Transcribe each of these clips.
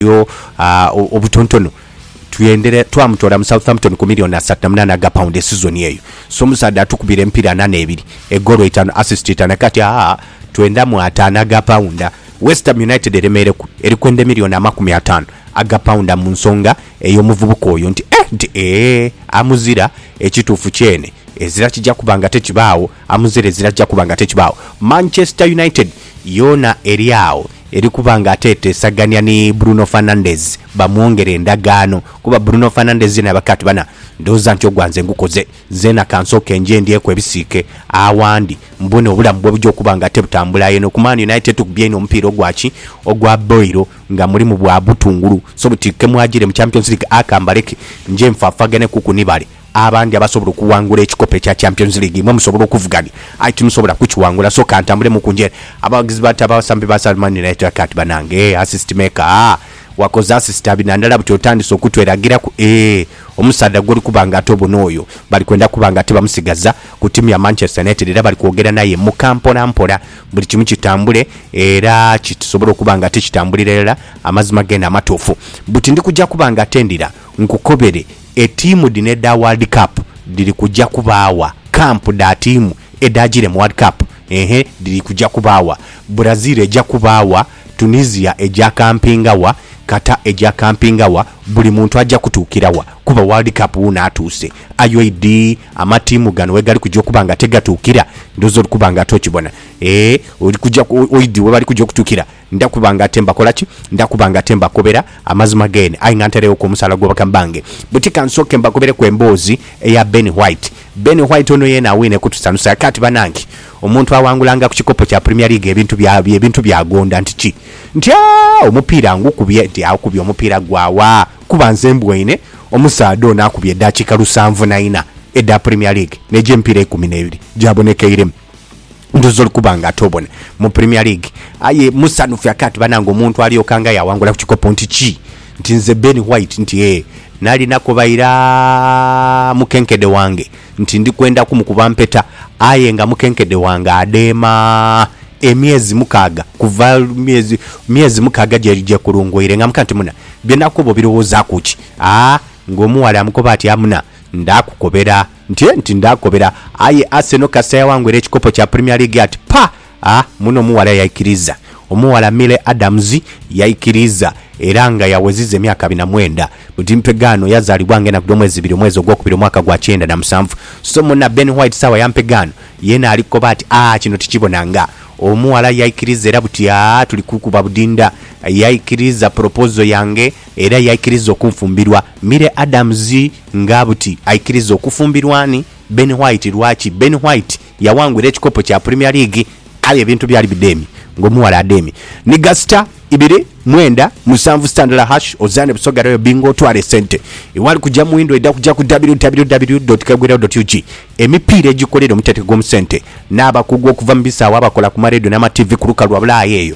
yo obutontono twendere twamutoola mu Southampton ku milioni asatu na munaana aga pound esizoni eyo. So omusaadha atukubira emipiira ana n'ebiri, egoolo itaanu, assist itaanu ate kati aa twendamu ataano aga paunda. West Ham United eremeereku eri kwenda emilioni amakumi ataano aga paunda mu nsonga ey'omuvubuka oyo nti eh nti eeh amuzira. Ekituufu kyene ezira kija kuba nga tekibaagho. Amuzira ezira ajja kuba nga tekibaawo. Manchester United yoona eri agho eri kuba nga ate eteesagania ni Bruno Fernandes bamwongere endagaano kuba Bruno Fernandes yena yabaka ati bana ndhooza nti ogwa nze ngukoze, nzeena ka nsooke nje ndyeku ebisiike awandi mbone obulamu bwe buja okuba nga tebutambula. Aye eno ku Man United tukubye inho omupiira ogwa ki? Ogwa boilo nga mulimu bwa butungulu so buti kemwajire mu Champions League aka mbaleke nje nfaafagane kuku ni bale. Abandi abasobola okuwangula ekikopo ekya Champions League imwe musobola okuvuganya aye timusobola kukiwangula so kantambulemuku njere abaghagizi ba ta basambi ba Sal Man United Akati banange eeh assist maker aah wakoze assist abi nandala buti otandise okutweragiraku eeh omusaadha gwoli kuba nga ate obona oyo bali kwenda kuba nga ate bamusigaza ku tiimu ya Manchester United era bali kwogera naye muka mpola mpola buli kimu kitambule era kitusobole okuba nga ate kitambulira irala amazima gene amatuufu buti ndikuja kuba nga ate ndira nkukobere Etiimu dhino edha World Cup dhiri kuja kubaawa. Kampu dha tiimu edhaajiire mu World Cup eeh dhiri kuja kubaawa. Brazil eja kubaawa, Tunisia eja kampinga wa, Qatar eja kampinga wa, buli muntu aja kutuukira wa? Kuba World Cup wuuno atuuse. Aye oidhi amatiimu gano wegali kuja okuba nga tigatuukira? Ndhooza ori kuba nga ate okibona. Eeh, ori kuja, oidhi webali kuja okutuukira? Nda kuba nga ate mbakola ki? Nda kuba nga ate mbakobera amazima geene, aye nga ntaireghoku omusaala gwa bakama bange. Buti ka nsooke mbakobereku emboozi eya Ben White. Ben White ono yeena awiine kutusanusa. Kaati banange, omuntu awangulanga ku kikopo kya Premier League ebintu bya, ebintu by'agonda nti ki? Nti, Aah, omupiira ngukubye. Nti, Akubye omupiira gwa wa? Kuba nze mbwoine omusaadha ono akubye edaakiika lusanvu na ina edha Premier League, n'egy'emipiira eikumi n'ebiri gyabonekeiremu. Ndhuze oli kuba nga ate obona mu Premier League aye musanhufu aka ati banange omuntu alyoka nga yawangula ku kikopo nti ki nti nze Ben White nti ee nali nakoba ira mukenkede wange nti ndi kwenda ku mukuba mpeta aye nga mukenkede wange adeema emyezi mukaaga kuva myezi myezi mukaaga gyekulunguire nga muka nti muna bye nakoba obirowozaku ki? Aa nga omuwala amukoba ati amuna ndakukobera Ntye nti ndaakobera, aye Arsenal kasita yawangwera ekikopo kya Premier League ati ppa! Ah, muno omughala yaikiriza. Omughala Mile Adams yaikiriza era nga yaweziza emyaka abiri na mwenda. Mu dimpegaano yazaalibwa ng'enaku dh'omwezi ibiri omwezi ogwokubiri omwaka gwa kyenda na musanvu. So munna Ben White sawa ya mpegaano yeena alikoba ati ah, kino tikibonanga. Omughala yaikiriza era buti ah, tuli kukuba budinda. Yaikiriza proposal yange. Era yaikiriza okunfumbirwa Mire Adams nga buti aikiriza okufumbirwa ani? Ben White Lwaki Ben White yaghangwira ekikopo kya Premier League aye ebintu byali bidheemye ng'omughala adheemye ni gasita ibiri mwenda musanvu sitandala hash ozaane Busoga Royal Bingo otwale esente ewali kugya mu windho edha kugya ku www.kagwirawo.ug Emipiira egikolerwa omutetegomu sente n'abakugu okuva mu bisaawe abakola ku ma Radio n'ama TV ku lukalu lwa Bulaaya eyo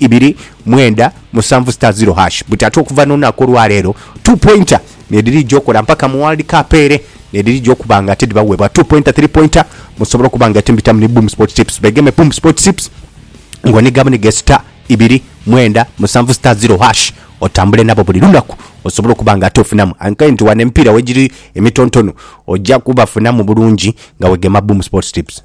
ibiri mwenda musanvu star zero hash buti ate okuva n'olunaku olwaleero two pointer nedhirija okola mpaka mu world cup ere nedhirija okuba nga ate dhibaweebwa two pointer three pointer musobole okuba nga ate mbitamu ni boom sport tips begeme boom sport tips nga oniga bunige star ibiri mwenda musanvu star zero hash otambule nabo buli lunaku osobole okuba nga ate ofunamu ankaye nti wano emipiira wegiri emitontono oja kubafunamu bulungi nga wegema boom sport tips.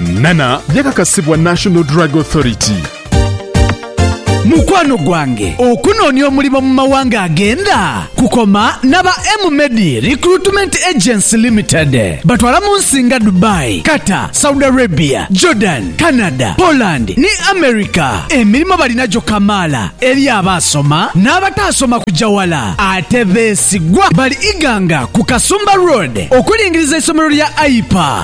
Nana yakakasibwa National Drug Authority. Mukwano gwange, okunoonia omulimo mu mawanga agenda kukoma n'aba M-Medi Recruitment Agency Limited. Batwala mu nsi nga Dubai, Qatar, Saudi Arabia, Jordan, Canada, Poland ni America. Emirimo balina gyo kamaala eri abaasoma n'abataasoma kugya wala ate beesigwa. Bali Iganga ku Kasumba Road okulingiriza eisomero lya AIPA.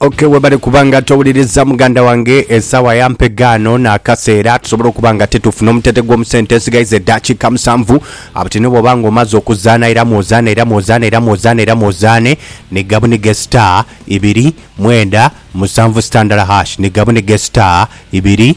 Okay, webale kuba nga towuliriza muganda wange esawa yampegaano n'akaseera tusobole okuba nga tetufuna omutete gw'omusente esigaiza eddakiika musanvu abutine bwoba nga omaze okuzaana iramu ozaane iramu ozaane iramu ozaane iramu ozaane ni gabunige star ibiri mwenda musanvu sitandala hash ni gabunige star ibiri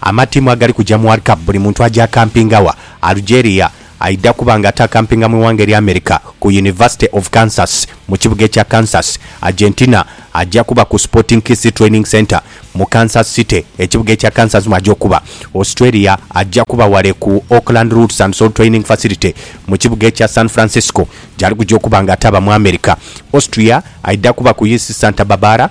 Amatiimu agali kuja mu World Cup buli muntu aja akampinga wa? Algeria aidha kuba nga ate akampinga mu ighanga erya America ku University of Kansas mu kibuga ekya Kansas. Argentina aja kuba ku Sporting KC Training Centre mu Kansas City ekibuga ekya Kansas mwaja okuba. Australia aja kuba wale ku Oakland Roots and Soul Training Facility mu kibuga ekya San Francisco gyali kuja okuba nga ate aba mu America. Austria aidha kuba ku UC Santa Barbara.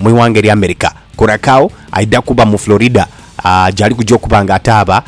mu ighanga erya America. Curacao aidha kuba mu Florida gyali kuja okuba nga ataaba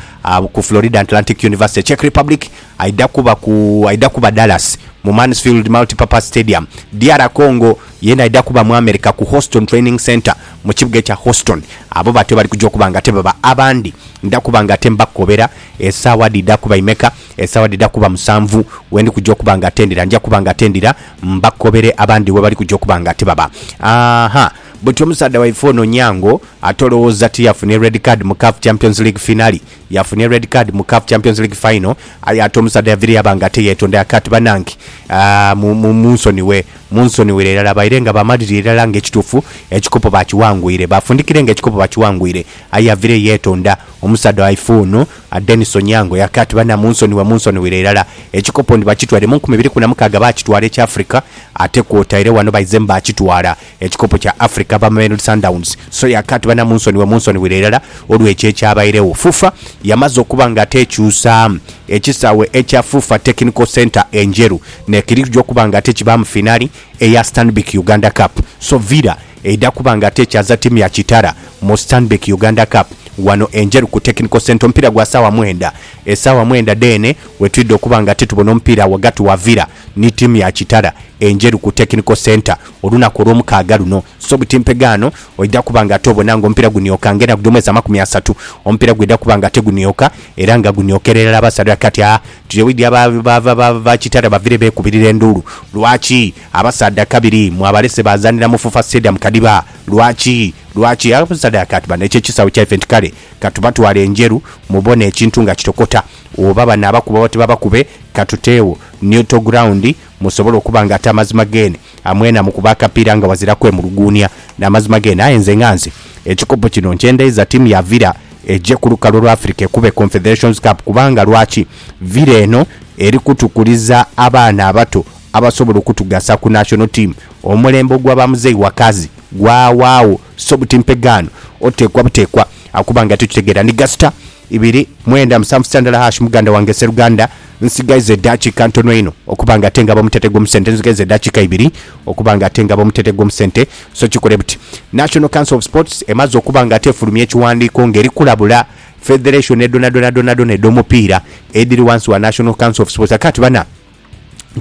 ku Florida Atlantic University. Czech Republic aidha kuba ku aidha kuba Dallas mu Mansfield Multipurpose Stadium. DR Congo yena aidha kuba mu America ku Houston Training Centre mu kibuga ekya Houston. Abo batyo bali kuja okuba nga ate baba abandi ndha kuba nga ate mbakobera esaawa dhidha kuba imeka. Esaawa dhidha kuba musanvu we ndi kuja okuba nga ate ndira. Nja kuba nga ate ndira. Mbakobere abandi webali kuja okuba nga tibaba. Ahaa. Buti omusaadha waife ono Onyango ate olowooza ti yafunye red card mu CAF Champions League finale? Yafunye red card mu CAF Champions League final aye ate omusaadha yaviire yaba nga teyetondera kati banange aah munsonighe munsonighere irala baire nga bamalirire irala nga ekituufu ekikopo bakiwangwire bafundikire nga ekikopo bakiwangwire aye yaviire yetonda omusaadha waife ono A Denis Onyango yake ati banamunsonhibwa munsonhwire irala. Ekikopo ndi bakitwaire mu nkumi ibiri ku na mukaaga baakitwala ekya Africa ate kwotaire wano baizemu baakitwala ekikopo kya Africa ava Mamelodi Sundowns so yake ati banamunsonhibwa munsonhwire irala olw'ekyo ekyabairegho. FUFA yamaze okuba nga ate ekyusaamu ekisaawe ekya FUFA Technical Centre e Njeru n'ekiri kuja okuba nga ate kibaamu finali eya Stanbic Uganda Cup so Villa Eidha kuba nga ate ekyaza tiimu ya Kitara mu Stanbic Uganda Cup wano e Njeru ku Technical Centre omupiira gwa saawa mwenda. Esaawa mwenda dheene wetwidha okuba nga ate tubona omupiira wagati wa Villa ni tiimu ya Kitara e Njeru ku Technical Centre olunaku olwomukaaga luno. So butimpegaano oidha kuba nga ate obona nga omupiira gunioka nga enaku dhomwezi amakumi asatu omupiira gwidha kuba nga ate gunioka era nga guniokeera irala abasaadha kati aa tuje widhi aba Kitara bavire bekubirira enduulu lwaki Abasaadha kabiri mwabalese baazanira mu FUFA Stadium Kadiba. Lwaki? Lwaki? Abasaadha yakaati bano ekyo ekisaawe kyaife nti kale katubatwale e Njeru mubone ekintu nga kitokota. Oba banaabakuba oba tibabakube katuteewo neutral ground musobole okuba nga ate amazima geene amwena mukuba akapiira nga wazira kwemuluguunia n'amazima geene. Aye nze nga nze ekikopo kino nkyendaiza ttiimu ya Villa eje ku lukalu lwa Africa ekube Confederations Cup kubanga lwaki? Villa eno eri kutukuliza abaana abato abasobola okutugasa ku National Team. Omulembe ogwa ba Muzei Wakazi gwawaagho so buti mpegaano oteekwa buteekwa akuba nga titutegeera. Ndi Gasita ibiri mwenda musanvu sita ndala hash muganda wange Sseruganda nsigaiza edaakiika ntono inho okuba nga ate ngaba omutete gw'omusente nzigaiza edaakiika ibiri okuba nga ate ngaba omutete gw'omusente so kikole buti National Council of Sports emaze okuba nga ate efulumya ekiwandiiko nga eri kulabula federation edhonadhonadhonadhona edh'omupiira edhiri wansi wa National Council of Sports ate kati bana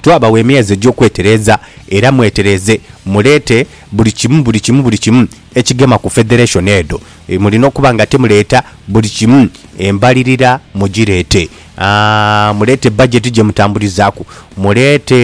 Twabawa emyezi egy'okwetereeza era mwetereeze muleete buli kimu, buli kimu, buli kimu ekigema ku federation edho. Mulina okuba nga temuleeta buli kimu, embalirira mugireete. Aah, muleete budget gye mutambulizaaku, muleete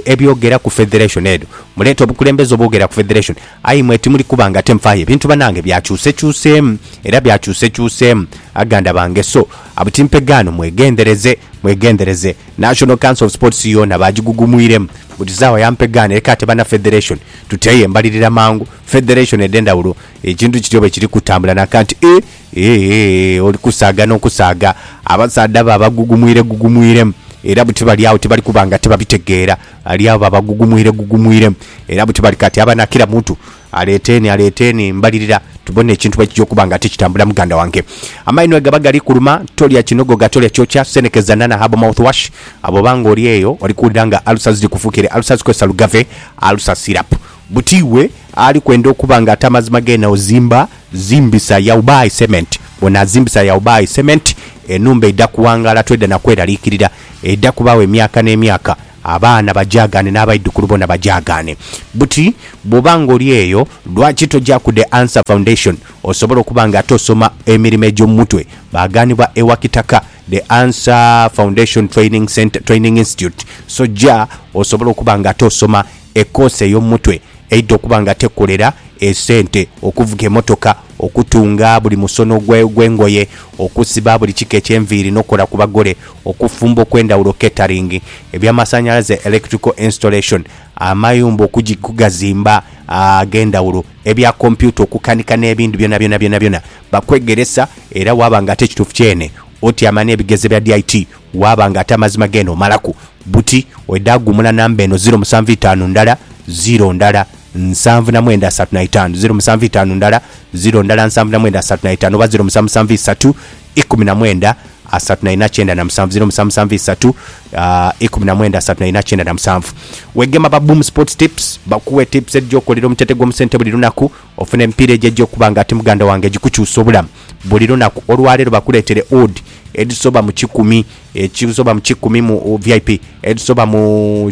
ebyogera ku federation edho, muleete obukulembeze obwogera ku federation, aye imwe timuli kuba nga ate mufaayo. Ebintu banange byakyusekyuseemu era byakyusekyuseemu aganda bange so, Abuti mpegaano mwegendereze, mwegendereze. National Council of Sports yoona baagigugumwiremu buti saawa ya mpegaano eka ate bana Federation tuteeyo embalirira mangu. Federation edh'endhawulo ekintu kityo bwe kiri kutambula naka nti e, e, e, oli kusaaga n'okusaaga. Abasaadha bo abagugumwiregugumwiremu era buti bali agho tibali kuba nga tibabitegeera. Bali agho babagugumwiregugumwiremu era buti bali kati aba na kira muntu. Aleeteeni, aleeteeni, mbalirira, tubone ekintu bwe kija okuba nga tikitambula. Muganda wange, amaino bwe gaba gali kuluma, tolya kinogoga, tolya kyokya, senekeza nana herbal mouthwash. Bw'oba nga oli eyo, oli kuwulira nga alusa ziri kufuukire alusas, kozesa Lugave Alusa Syrup. Buti iwe ali kwenda okuba nga ate amazima geene ozimba, zimbisa Yao Buy Cement. Bw'onaazimbisa Yao Buy Cement, enhumba eidha kuwangaala, toidha na kweraliikirira. Eidha kubaawo emyaka n'emyaka. Abaana bajaagaane n'abaidhukulu boona bajaagaane. Buti bw'oba ng'oli eyo, lwaki toja ku The Answer Foundation osobole okuba nga ate osoma emirimo egy'omu mutwe? Baagaanibwa e Wakitaka, The Answer Foundation Training Centre, Training Institute. So ja osobole okuba nga ate osoma ekoosi ey'omu mutwe eidha okuba nga ate ekolera esente, okuvuga emotoka, okutunga buli musono gw'engoye, okusiba buli kika eky'enviiri n'okukola ku bagole. Okufumba okw'endhawulo, catering, eby'amasanhalaze, electrical installation, amayumba okugi okugazimba ag'endhawulo, ebya kompyuta okukanika n'ebindi byonabyona byonabyona bakwegeresa era waaba nga ate ekituufu kyene otyama n'ebigezo bya DIT waaba nga ate amazima geene omalaku buti oidha ghuumula namba eno, ziro musanvu itaanu ndala ziro ndala nsanvu na mwenda asatu na itaanu, ziro musanvu itaanu ndala ziro ndala nsanvu na mwenda asatu na itaanu oba ziro musanvu musanvu isatu. ikumi na mwenda asatu na ina kyenda na musanvu ziro musanvu musanvu isatu aah ikumi na mwenda asatu na ina kyenda na musanvu Wegema ba Boom Sports Tips bakuwe tips edhija okukolera omutete gwo musente buli lunaku ofune emipiira egyo egya okuba nga ati muganda wange egikukyusa obulamu buli lunaku olwaleero bakuletere odd edhisoba mu kikumi ekisoba mu kikumi mu VIP edhisoba mu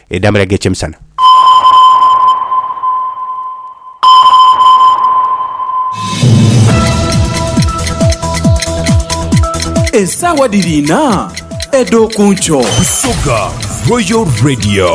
Edambala gh'ekyemisana. Esaawa dhiri inha edh'oku nkyo. Busoga Royal Radio.